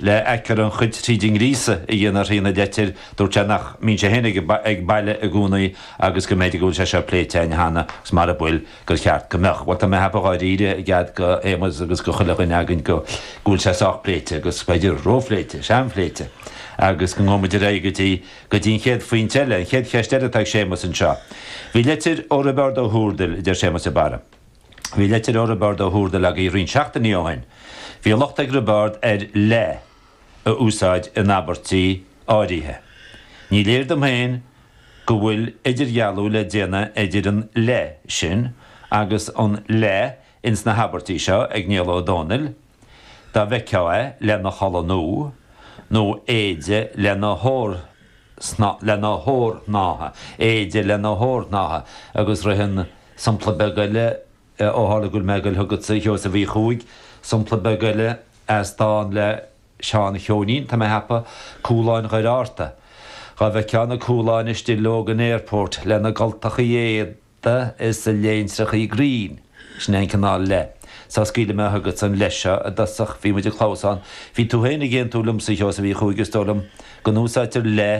Le aicearra an chait thríd an ngríosach a dhéanamh ar thaobh na leitire dúirt sé nach mbíonn sé féin ag baile i gcónaí agus go mb'fhéidir go bhfuil sé seo pléite againn cheana agus mara bhfuil gur cheart go mbeadh. Bhuel tá mé a cheapadh dháiríre i gcead do Shéamas agus do chuile dhuine againn go bhfuil sé sách pléite agus b'fhéidir róphléite, seanphléite agus go ngabhfaidh muid ar aghaidh go dtí an chéad phointe eile, an chéad cheist eile atá ag Séamus anseo. Bhí leitir ó Roibeárd Ó hÚrdail, a deir Séamus de Barra. Bhí leitir ó Roibeárd Ó hÚrdail agaibh roinnt seachtainí ó shin. Bhí locht ag Roibeárd ar 'le' a úsáid in abairtí áirithe. Ní léir dom féin go bhfuil idirdhealú le déanamh idir an 'le' sin agus an 'le' ins na habairtí seo ag Niall Ó Dónaill, Dá bhfeictheá é lena chulaith nua, nó éide lena hórshnáithe, éide lena hórshnáithe, agus ritheann sompla beag eile, ó tharla go bhfuil mé ag goil chugatsa, a Sheosaimh Uí Chuaig, sompla beag eile as dán le Seán Cheoinín, tá mé a cheapadh, Cúláin Dhoire Fhatharta. Dhá bhfeictheá na cúláin istigh Logan Airport, lena gcultachaí éadaigh, T is a léine sky green. Sin é an cineál le. Só scaoilfidh mé chugatsa an le seo i dtosach. Bhí muid ag clamhsán. Bhí tú féin ag aontú liomsa, a Sheosaimh Uí Chuaig, is dóigh liom, go n-úsáidtear le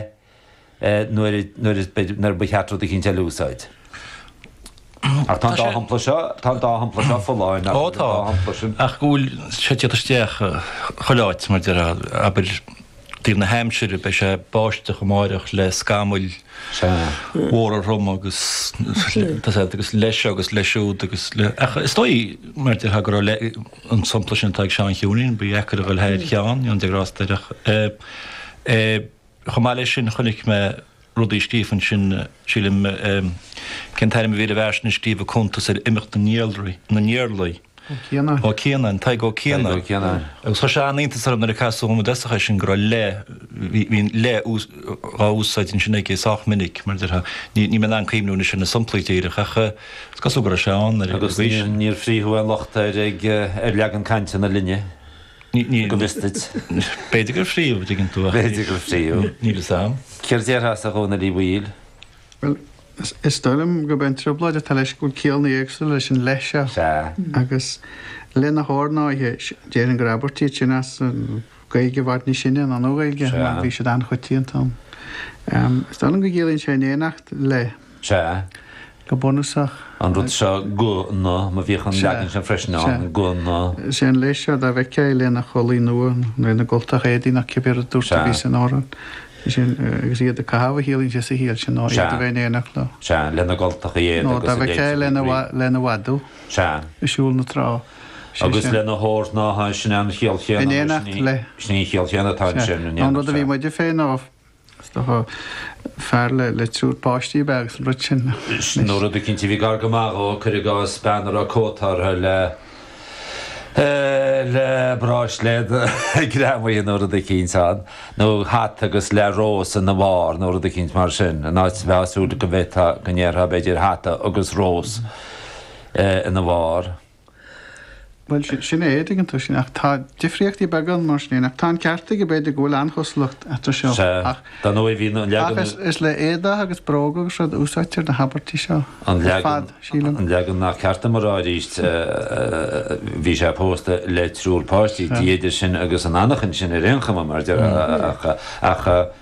nuair nuair ba cheart rud eicínt eile a úsáid. Ach tá an dá shampla seo, tá an dá shampla seo folláin, nach bhfuil? Ó tá, ach go bhfuil sé ag teacht isteach chuile áit, mar a deir, abair, Taobh na haimsire beidh sé ag báisteach amáireach le scamaill mhóra throma agus leis seo agus leis siúd agus le ach is dóigh mar déarfá go raibh an sampla sin atá ag Seán Cheoinín, ba dheacair a dhul thar Sheán, go ndéana Dia grásta air. Chomh maith leis sin chonaic mé rud a scríobh ansin, sílim. Cén t-ainm a bhí ar an bhfear sin a scríobh an cuntas ar imeacht na nIarlaí? Ó Cianáin. Ó Cianáin, Tadhg Ó Cianáin. Tadhg Ó Cianáin. Agus chuir sé an-iontas orm nuair a casadh orm píosa dhe sin go raibh le, bhí an le á úsáid ansin aige sách minic, mar déarfá. Níl mé in ann cuimhniú anois ar na somplaí díreach ach is cosúil go raibh sé ann ar aon nós. Agus níor frítheadh aon locht ar leagan cainte na linne. go bhfios duit. B'fhéidir gur frítheadh an dtuigeann tú ach. B'fhéidir gur frítheadh. Níl fhios a'am. Céard déarfása a Dhónaill Uí Bhaoill? Bhuel, is dóigh liom gurb é an trioblóid atá leis go bhfuil cialla éagsúla leis an le seo. Sea. Agus lena hórshnáithe, déarfainn gur abairtí iad sin as Gaeilge i bhfad níos sine ná an Nua-Ghaeilge, mar bhí siad an-choitianta ann. Is dóigh liom go gciallaíonn sé in éineacht le. Sea. Go bunúsach. An rud seo go, nó, má bhíodh an leagan sin freisin ann, Sea. go, nó sin leis, dá bhfeictheá é lena chulaith nua, nó lena gcultacha éadaigh nó cibé rud a dúirt tú a bhí san amhrán. Sé sin, agus iad ag caitheamh a shíl sé sa shaol seo, ná iad a bheith in éineacht leo. Sea, lena gcultacha éadaigh Nó dá bhfeictheá é lena, lena mhadadh. Sea. Ag siúl na trá. Sé sin. Agus lena hata, sin é an chiall chéanna. In éineacht le. Sin í an chiall chéanna atá ansin. In éineacht le. An rud a bhí muide féin á. Is dócha fear le, le triúr páistí a bheith agus an rud sin. Sin nó rud eicínt a bhí gar go maith dhó, cuir i gcás bean a raibh cóta uirthi le, le bráisléad greamaithe nó rud eicínt ann, nó hata agus le rós ina bharr nó rud eicínt mar sin, an mbeifeá ag súil go bhféadfá, go ndéarfá b'fhéidir hata agus rós ina bharr. Bhuel, sin é, an dtuigeann tú sin, ach tá difríochtaí beaga ann mar sin féin, ach tá an ceart agat b'fhéidir go bhfuil an-chosúlacht eatarthu seo. Sea, dar ndóigh bhí an leagan... Ach is le éadaigh agus bróga agus rud a úsáidtear na habairtí seo ar fad, sílim. An leagan nach ceart dom a rá arís, bhí sé pósta le triúr páistí, b'fhéidir sin agus an athnuachan sin ar aon chuma, mar a déarfá, ach...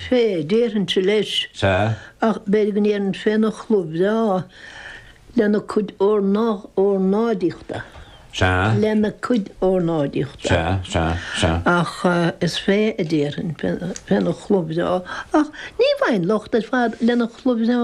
fé, déarfainnse leis. Sea. Ach b'fhéidir go ndéarfainn féna chlóca breá, lena cuid ornáidíochta. Sea. Lena cuid ornáidíochta. Sea, sea, sea. Ach is fé a déarfainn, féna chlóca breá. Ach ní bhfaighinn locht ar fad lena chlóca breá.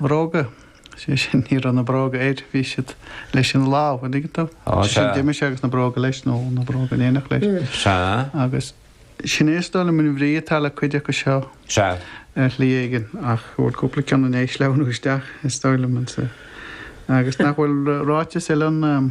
Bróga, sé sin, ní raibh na bróga air, bhí siad leis ina láimh, an dtuigeann tú? Ó, Sé sin, sea. d'imigh sé agus na bróga leis, nó na bróga in éineacht leis. Sea. Agus sin é is dóigh liom an bhrí atá le cuid acu seo Sea. ar shlí éigin, ach go bhfuil cúpla ceann in éis sleamhnú isteach, is dóigh liom, ansan. Agus nach bhfuil ráiteas eile ann.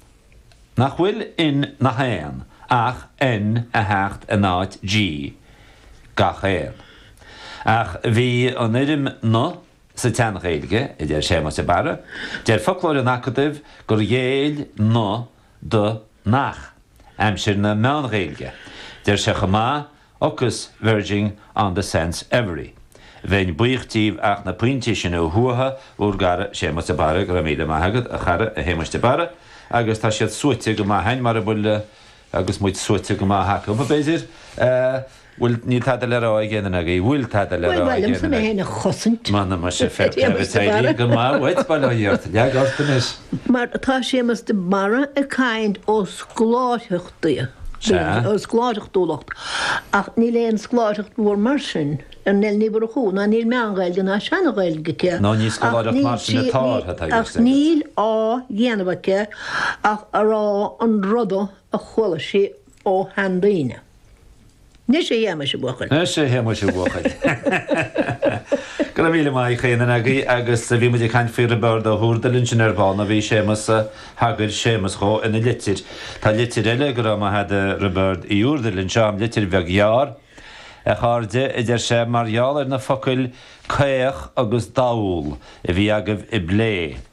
nach bhfuil in nach aon ach N ag teacht in áit G, gach aon. Ach bhí an fhoirm na sa tSean-Ghaeilge, a deir Séamas de Barra. Deir foclóir an Acadaimh gur ghéill na do nach, aimsir na Meán-Ghaeilge. Deir sé chomh maith agus verging on the sense every Bheinn buíoch díbh ach na pointí sin a shuaitheadh ár gcara Séamas de Barra Go raibh míle maith agat, a chara, a Shéamais de Barra. Agus tá siad suaite go maith a'inn, mara bhfuil agus muid suaite go maith acu, b'fhéidir. Bhfuil, níl tada le rá ag aon duine agaibh? Bhfuil tada le rá ag aon duine agaibh? M'anam, muis, a Pheter, is éirí go maith uait, bail ó Dhia ort. Leag ort anois. Mar tá Séamas de Barra ag caint as Leamhcán. Dia. Dia. Ó, scoláireachtúlacht. Ach níl aon scoláireacht mhór mar sin ar Neil Ní Mhurchú, ná níl meán-Ghaeilge ná seana-Ghaeilge aici, Ná ní scoláireacht mar sin atá uirthi, tá a fhios agat. Ach níl á dhéanamh aici ach a rá an rud a chuala sí ó sheandaoine. Is ea, a Shéamais, a bhuachaill. Go raibh míle maith ag chaon duine agaibh agus bhí muid ag caint faoi Roibeárd Ó hÚrdail ansin ar ball nó bhí Séamas, thagair Séamas dhó ina litir. Tá litir eile go raibh maith a'd a Roibeáird Uí Úrdail anseo a'm, litir bheag ghearr. A chairde, a deir sé, mar gheall ar na focail 'caoch' agus 'dall' a bhí agaibh á bplé,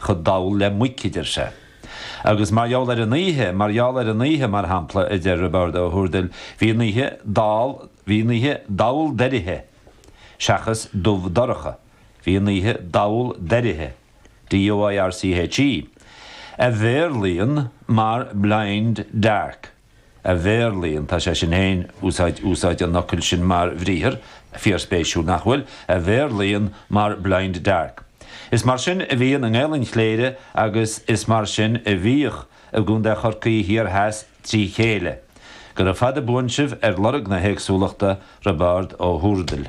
chomh dall le muic, a deir sé. Agus mar gheall ar an oíche, mar gheall ar an oíche, mar shampla, a deir Roibeárd Ó hÚrdail, bhí an oíche dall, bhí an oíche dall doirche, seachas dubh dorcha, bhí an oíche dall doirche, DOIRCHE, a bhéarlaíonn mar blind dark. a bhéarlaíonn, tá sé sin féin, úsáid, úsáid an fhocail sin mar bhriathar, fíorspéisiúil, nach bhfuil? a bhéarlaíonn mar blind dark. Is mar sin a bhíonn i nGaelainn Chléire agus is mar sin a bhíodh i gContae Chorcaí thiar theas trí chéile. Gura fada buan sibh ar lorg na héagsúlachta, Roibeárd Ó hÚrdail.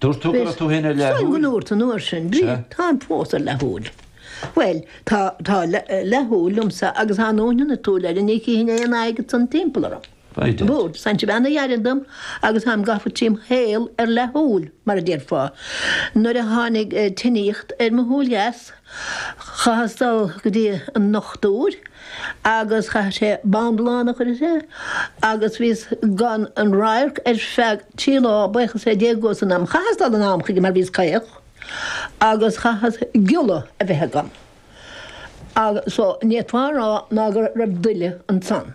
Dúirt tú go raibh tú féin ar leathshúil. Táim go ndúirt an uair sin, Bríd, táim fós ar leathshúil. Bhuel, tá leathshúil liomsa agus dá ndúnfainn an tsúil eile, ní chífinn aon fhaic ansan timpeall orm. Bhuel, san cibé a dheireann dom agus táim gafa trím shaol ar leathshúil, mar a déarfá, nuair a tháinig tinníocht ar mo shúil dheas, Chaitheas dul go dtí an ndochtúir agus chaith sé bindealán a chuir sé agus bhíos gan aon radharc ar feadh trí lá, bhíos sé déag d'aois san am. Chaitheas dul anonn chuige mar bhíos caoch agus chaitheas giolla a bheith agam, so ní fhéadfá a rá ná go raibh daille ansan.